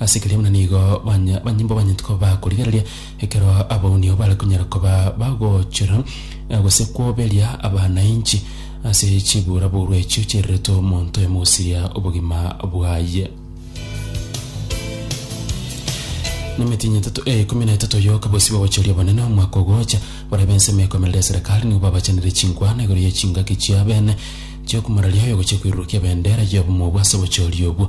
Ase keria buna nigo banya banyimbo banyete koba bakorigereria ekero abaunio bare konyara koba bagochora eh, gose kwoberia abanainchi ase chiburaburo echio chiererete omonto oyomo gosiria obogima bwaye. Nemitinyi etato eh, ikumi na etato yoka bosi bagochoria abanene omwaka ogocha barabe ensemo ekomerera eserekari nigo babachanire chinkwana igoro ye chingaki chiabene chiokumararia oyo gochia koirurukia ebendera y'obomo obwo ase obochoria obwo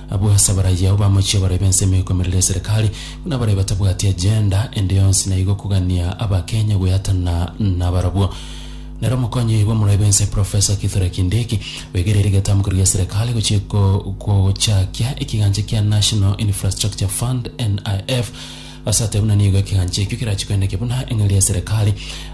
Abwo ase abaraiyo ao bamochie bare b'ensemo ekomerera eserekari, buna bare batabwati agenda ende yonsi na igo kogania Abakenya gweatana nabarabwo. Nere omokonyi bw'omorai bw'ense Professor Kithure Kindiki oigereiri getamoko erio gi'eserekari gochia ko- gochakia ekigancha kia National Infrastructure Fund, NIF, Ase ata buna nigo ekegancha ekio kerachie koeneke buna eng'eria ya serikali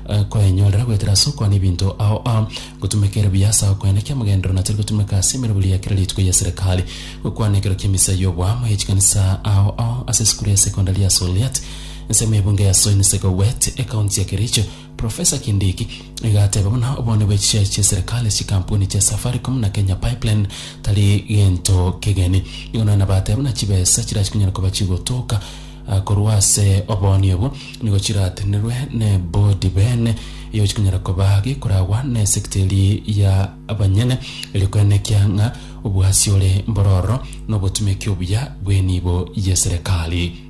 eh, koenyorera goetera ase okwana ebinto ao ao gotumeka ere buya ase agokoeneka amagenderero natari gotumeka ase emerobori ya kera rituko ya serikali gokwana ekero ki'emisa y'oboamo ye chikanisa ao ao ase esukuru ya sekondari ya Soliat ensemo y'ebunge ya Soin Sekowet ekaunti ya Kericho Professor Kindiki igateba buna obonde bwe chishares chi'eserekari ase chikampuni chia Safaricom na Kenya Pipeline tari gento kegeni, igo nonya nabateba buna chibesa chirachia konyara koba chigotoka korwa ase oboonia obwo nigo chiratenerwe nebodi bene igo chikonyara koba gekoragwa nesector eria ya abanyene erio koenekia ng'a obwasi ore mbororo nobotumeki obuya bw'enibo y'eserekari.